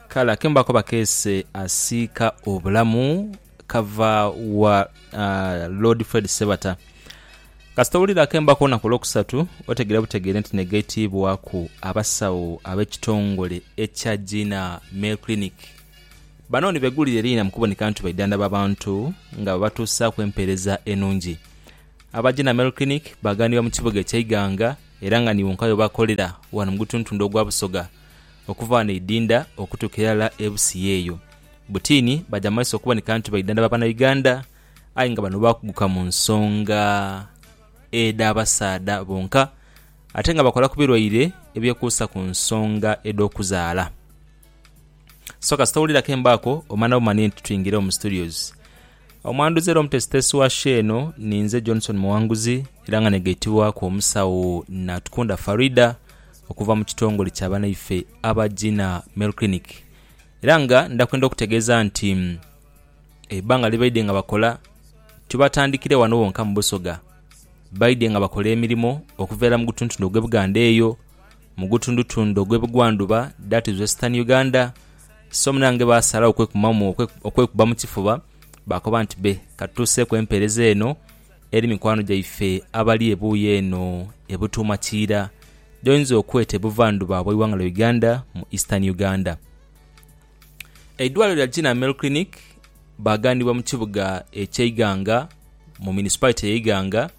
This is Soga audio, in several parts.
Kale akembo ako bakeese asiika obulamu kava wa Lord Fred Sebata. Kasita owulira akembo ako olunaku olwokusatu otegeera butegeere nti negaitiibwaku abasawo ab'ekitongole ekya Gina Male Clinic. Bano ni begulire liina mu kuboneka nti baidhandhaba bantu nga babatuusaaku empeereza enungi. Aba Gina Male Clinic baaganibwa mu kibuga ekya Iganga Era nga ni wonka webakolera ghano mu gutuntundu ogwa Busoga, okuva ghano e Idinda okutuuka irala e Busia eyo. Butini baja mu maiso okuboneka nti baidhandhaba Banauganda, aye nga bano baakuguka mu nsonga edh'abasaadha bonka ate nga bakola ku birwaire ebyekuusa ku nsonga edh'okuzaala. So kasita owulira akembo ako, omana bumani nti twingire mu Studios. Omwanduzi era omutesitesi wa show eno ninze Johnson Muwanguzi era nga negaitibwaku omusawo Natukunda Faridah okuva mu kitongole kya banaife aba Gina Male Clinic era nga ndakwenda okutegeeza nti ebbanga libaidhe nga bakola tibatandikire wano wonka mu Busoga baidhe nga bakola emirimo okuveera mu gutuntundu ogwe Buganda eyo, mu gutundutundu ogwe Bugwanduba that is Western Uganda, so munange baasalagho okwekumamu okwe- okwekuba mu kifuba baakoba nti be ka tutuuseeku empeereza eno eri mikwano gyaife abali ebuuyi eno e Butuuma Kiira gy'oyinza okweta e buvandhuba bw'eighanga lya Uganda mu Eastern Uganda. Eidwaliro lya Gina Mel Clinic baaghanibwa mu kibuga eky'e Iganga mu Municipality y'e Iganga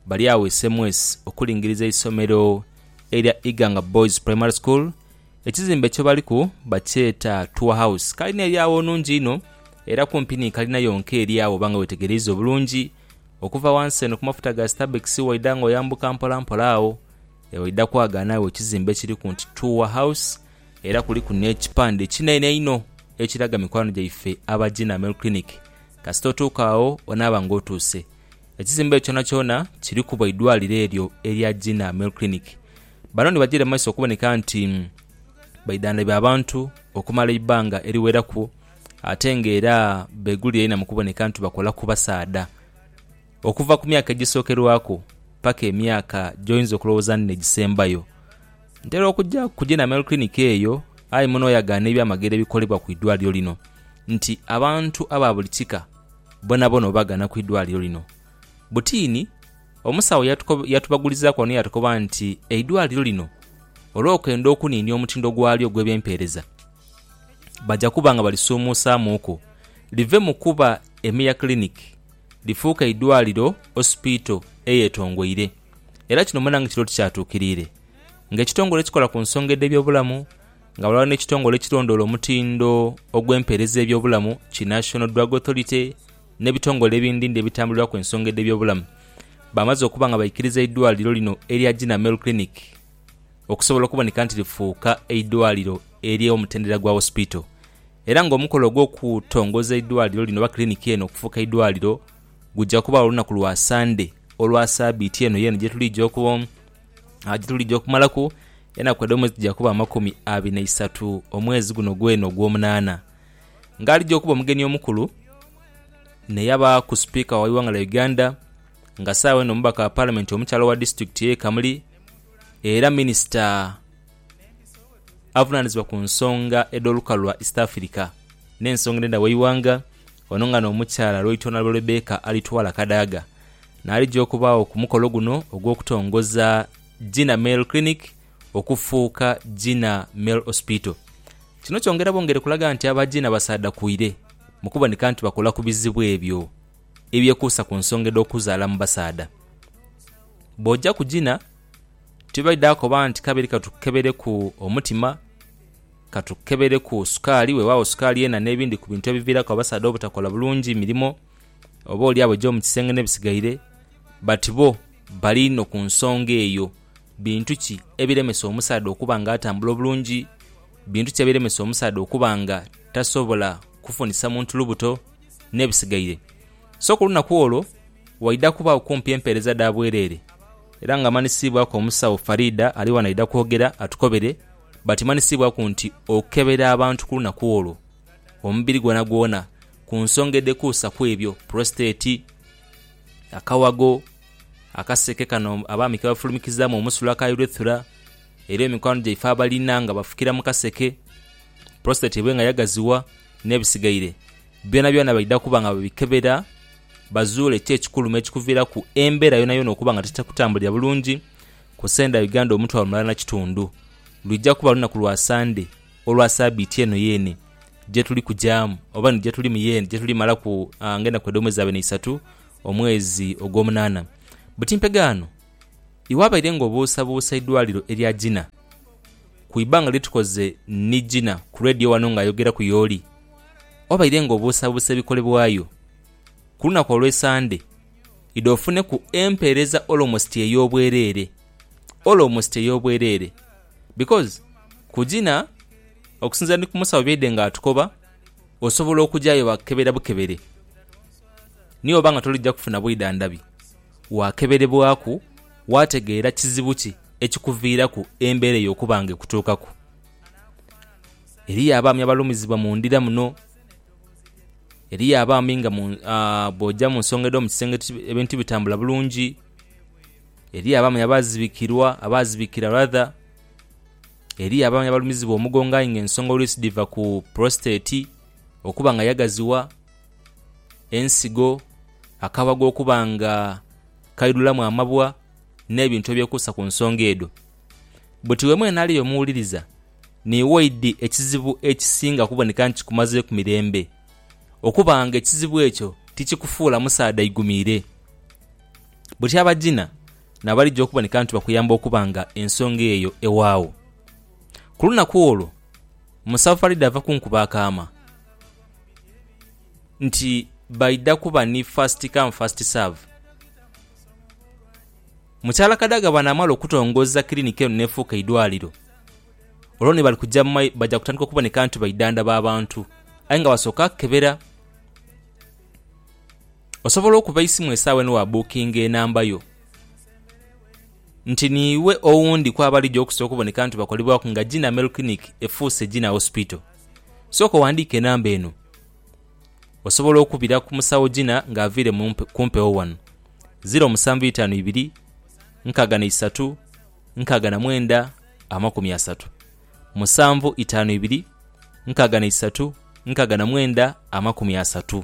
bali agho e Semwesi okulingiriza eisomero erya Iganga Boys Primary School Ekizimbe kye baliku bakyeta Tour House. Kalina eri agho nnhungi inho era kumpi ni kalina yonka eri agho oba nga wetegereiza obulungi. Okuva ghansi eno ku mafuta ga Stabex waidha nga oyambuka mpolampola agho, waidha kwagaana agho ekizimbe ekiriku nti Tour House era kuliku n'ekipande ekinene einho ekiraga mikwano gyaife aba Gina Male Clinic. Kasita otuuka agho onaaba nga otuuse. Ekizimbe ekyo kyonakyona kiriku bwa idwaliro eryo erya Gina Male Clinic. Bano ni bajaire mu maiso okuboneka nti baidhandhabya abantu okumala eibbanga eriweraku ate nga era begulira inha mu kuboneka nti bakola ku basaadha okuva ku myaka egisokerwaku paka emyaka gyoyinza okulowooza nti negisembayo. Ntera okuja ku Genamel Clinic eyo aye muno oyagaana ebyamagero ebikolebwa ku idwaliro lino nti abantu aba buli kika bonabona obagana ku idwaliro lino butiini. Omusawo yatubagulizaaku ghano yaatukoba nti eidwaliro lino olw'okwenda okuniinia omutindo gwalyo ogw'ebyempeereza, baja kuba nga balisuumuusaamuuku live mu kuba Emia Clinic lifuuke eidwaliro, Hospital, eyetongoire. Era kino munange kiri oti kyatuukiriire ng'ekitongole ekikola ku nsonga edh'ebyobulamu nga ghalala n'ekitongole ekirondoola omutindo ogw'empeereza y'ebyobulamu ki National Drug Authority, n'ebitongole ebindindi ebitambulirwaku ensonga edh'ebyobulamu baamaze okuba nga baikiriza eidwaliro lino erya Jina Male Clinic okusobola okuboneka nti lifuuka eidwaliro ery'omutendera gwa wosipiito era nga omukolo ogw'okutongoza eidwaliro lino oba kiliniki eno okufuuka eidwaliro gujja kubaawo olunaku lwa Sande olwa sabiiti eno yeeno gyetuliija okumalaku enaku edh'omwezi dhija kuba amakumi abiri na isatu omwezi guno gweena ogw'omunaana. ng'alija okuba omugeni omukulu n'eyabaaku Sipiika w'eighanga lya Uganda nga saagho eno mubaka wa Palamenti omukyala owa disitulikiti y'e Kamuli era minisita avunaanizibwa ku nsonga edh'olukalu lwa East Africa n'ensonga edh'endha w'eighanga, ono nga n'omukyala Lwaitoonalwe Rebecca Alitwala Kadaga n'alija okubaagho ku mukolo guno ogw'okutongoza Gina Male Clinic okufuuka Gina Male Hospital. Kino kyongera bwongere kulaga nti aba Gina basaadhakuire mu kuboneka nti bakola ku bizibu ebyo ebyekuusa ku nsonga edh'okuzaala mu basaadha. Bw'ojaku Gina, tibaidha akoba nti kabiri katukukebereku omutima, katukukebereku sukaali, weewaawo sukaali yena n'ebindi ku bintu ebiviiraku abasaadha obutakola bulungi mirimo oboolyawo egy'omu kisenge n'ebisigaire but bo bali inho ku nsonga eyo. Bintu ki ebiremesa omusaadha okuba nga atambula obulungi? Bintu ki ebiremesa omusaadha okuba nga tasobola kufunisa muntu lubuto? N'ebisigaire. So ku lunaku olwo waidha kubaagho kumpi empeereza dha bwereere era nga Manisiibwaku omusawo Faridah ali ghano aidha kwogera atukobere but Manisiibwaku nti okukebera abantu ku lunaku olwo omubiri gwonagwona ku nsonga edhekuusa ku ebyo, prostate, akawago, Akaseke kano abaami ke bafulumikizaamu omusulo aka urethra, era emikwano gyaife abalina nga bafukira mu kaseke, prostate ebe nga yagaziwa, n'ebisigaire byonabyona baidha kuba nga babikebera bazuule ki ekikulu me kikuviiraku embeera yoonayoona okuba nga tetakutambulira bulungi. Ku Senda Uganda omutwalo mulala na kitundu, lwija kuba lunaku lwa Sande olwa saabiiti eno yeene gye tuli kugyamu oba ni gye tulimu yeene gye tulimalaku ng'enaku edh'omwezi abe n'eisatu. omwezi ogw'omunaana. Buti mpegaano iwe abaire nga obuusabuusa eidwaliro erya Gina ku ibanga lye tukoze ni Gina ku Radio wano nga ayogeraku y'oli obaire nga obuusabuusa ebikolebwayo ku lunaku olw'Esande idho ofuneku empeereza almost ey'obwereere, almost ey'obwereere because ku Gina okusinziira ni ku musawo byaidhe nga atukoba. osobola okujayo bakukebera bukebere niyo oba nga tolija kufuna bwidhandhabi wakeberebwaku wategeera kizibu ki ekikuviiraku embeera eyo okuba nga ekutuukaku. Eriyo abaami abalumizibwa mu ndhira muno, eriyo abaami nga bw'oja mu nsonga edh'omu kisenge ebintu tibitambula bulungi, eriyo abaami abaazibikirwa, abaazibikira rather. Eriyo abaami abalumizibwa omugongo aye nga ensonga oluisi dhiva ku prostate okuba nga yagaziwa, ensigo, akabago okuba nga kaidhulamu amabwa n'ebintu ebyekuusa ku nsonga edho. Bwetiiwe mwene ali eyo omuwuliriza, ni waidhi ekizibu ekisinga okuboneka nti kikumazeeku mirembe okuba nga ekizibu ekyo tikikufuula musaadha aigumiire. Bwetyo abagina n'abalija okuboneka nti bakuyamba okuba nga ensonga eyo ewaagho. Ku lunaku olwo Musafa alidha ava ku nkuba akaama nti baidha kuba ni first come first serve. Mukyala Kadaga bw'anaamala okutongoza kiriniki eno n'efuuka eidwaliro, olwo ni bali kuja mu mai baja kutandika okuboneka nti baidhandhaba abantu aye nga basooka kukebera. Osobola okuba eisimu esaawa eno wa bukinga enamba yo nti niiwe owundi ku abalija okusa okuboneka nti bakolebwaku nga Gina Male Clinic efuuse Gina Hospital. Sooka owandiike enamba eno. Osobola okubira ku musawo Gina nga aviire mu ku mpewo wano. Ziro musanvu itaanu ibiri, nkaaga na isatu, nkaaga na mwenda, amakumi asatu. Musanvu itaanu ibiri, nkaaga na isatu, nkaaga na mwenda, amakumi asatu.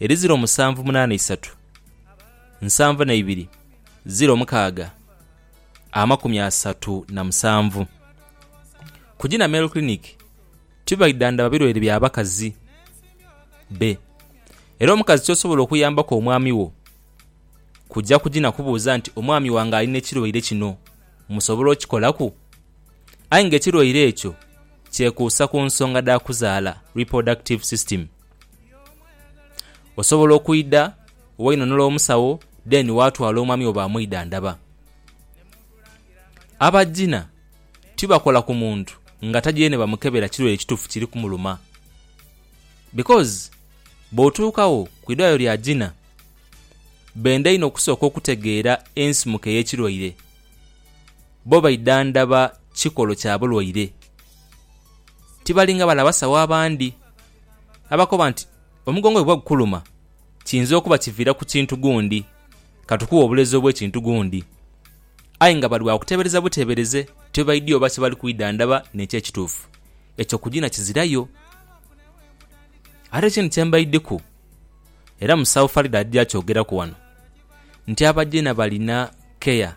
Eri ziro musanvu munaana isatu nsanvu na ibiri ziro mukaaga amakumi asatu na musanvu. Ku Gina Male Clinic tibaidhandhaba birwaire bya bakazi be era omukazi ky'osobola okuyambaku omwami wo kuja ku Gina kubuuza nti omwami wange ali n'ekirwaire kino musobola okikolaku? Aye nga ekirwaire ekyo kyekuusa ku nsonga dha kuzaala, reproductive system. Osobola okwidha wainhonhola omusawo then watwala omwami wo bamwidhandhaba. Abaginha tibakola ku muntu nga taidhire ni bamukebera kirwaire kituufu kiri kumuluma because bw'otuukagho ku idwaliro lya ginha benda inho okusooka okutegeera ensimuka ey'ekirwaire. Bo baidhandhaba kikolo kya bulwaire. tibali nga bale abasawo abandi abakoba nti omugongo bwe guba gukuluma kiyinza okuba kiviira ku kintu gundi, ka tukughe obulezi obw'ekintu gundi, aye nga bali ba kuteebereza buteebereze ti bwe baidhie oba kye bali kwidhandhaba n'ekyo ekituufu. Ekyo kugina kizirayo. Ate ekindi kye mbaidhiku, era musawo Faridah aja kyogeraku ghano, nti Abagina balina keya.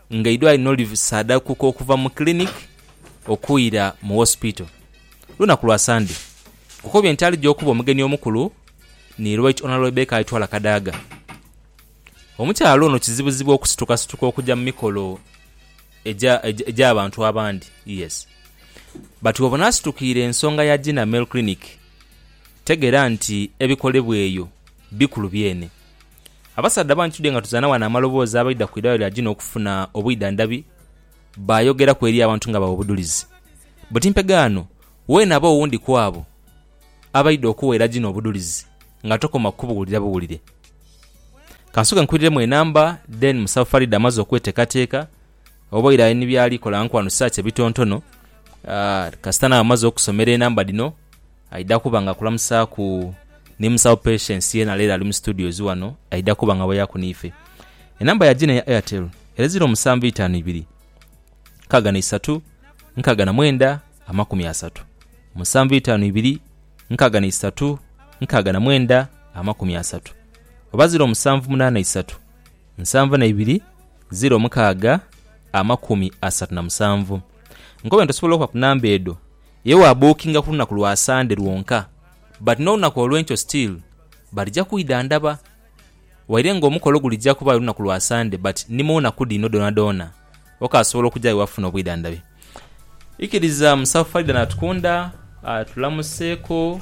nga eidwaliro nho liv saadakuka okuva mu clinic okuira mu hospital lunaku lwa Sunday kukobye nti alija okuba omugeni omukulu ni Right Honourable Rebecca Aitwala Kadaga. Omukyala ono kizibuzibu okusitukasituka okuja mu mikolo egya egya bantu abandi yes but wobona asitukiire ensonga ya Gina Male Clinic tegera nti ebikolebwa eyo bikulu byene. Abasaadha bangi tudhye nga tuzaana ghano amaloboozi abaidha ku idwaliro lya Gina okufuna obwidhandhabi baayogeraku eri abantu nga bagha obudhulizi. Buti mpegaano weenaba owundi ku abo abaidha okuweera Gina obudhulizi nga tokoma ku kubuwulira buwulire. Ka nsooke nkuiriremu enamba then musabe Faridah amaze okweteekateeka Oboire ali ni by'ali kola nku anusaaki ebitontono, kasita naaba amaze okusomera enamba dhino aidha kuba nga akulamusaaku ni musawo Patience yena leero ali mu studios wano aidha kuba nga aboyaku n'ife. Enamba ya Gina eya Airtel ere ziro musanvu itaanu ibiri nkaaga na isatu nkaaga na mwenda amakumi asatu, musanvu itaanu ibiri nkaaga na isatu nkaaga na mwenda amakumi asatu oba ziro musanvu munaana isatu. Nsanvu na ibiri ziro omukaaga amakumi asatu na musanvu. Nkoba nti osobola okuba ku number edho ye wa bookinga ku lunaku lwa Sunday lwonka but n'olunaku olwenkyo still balija kwidhandhaba waire nga omukolo gulija kuba aye lunaku lwa Sunday but ni mu naku dhino dhoonadhoona okaasobola okuja aye wafuna obwidhandhabi. Ikiriza Musawo Faridah Natukunda atulamuseeko.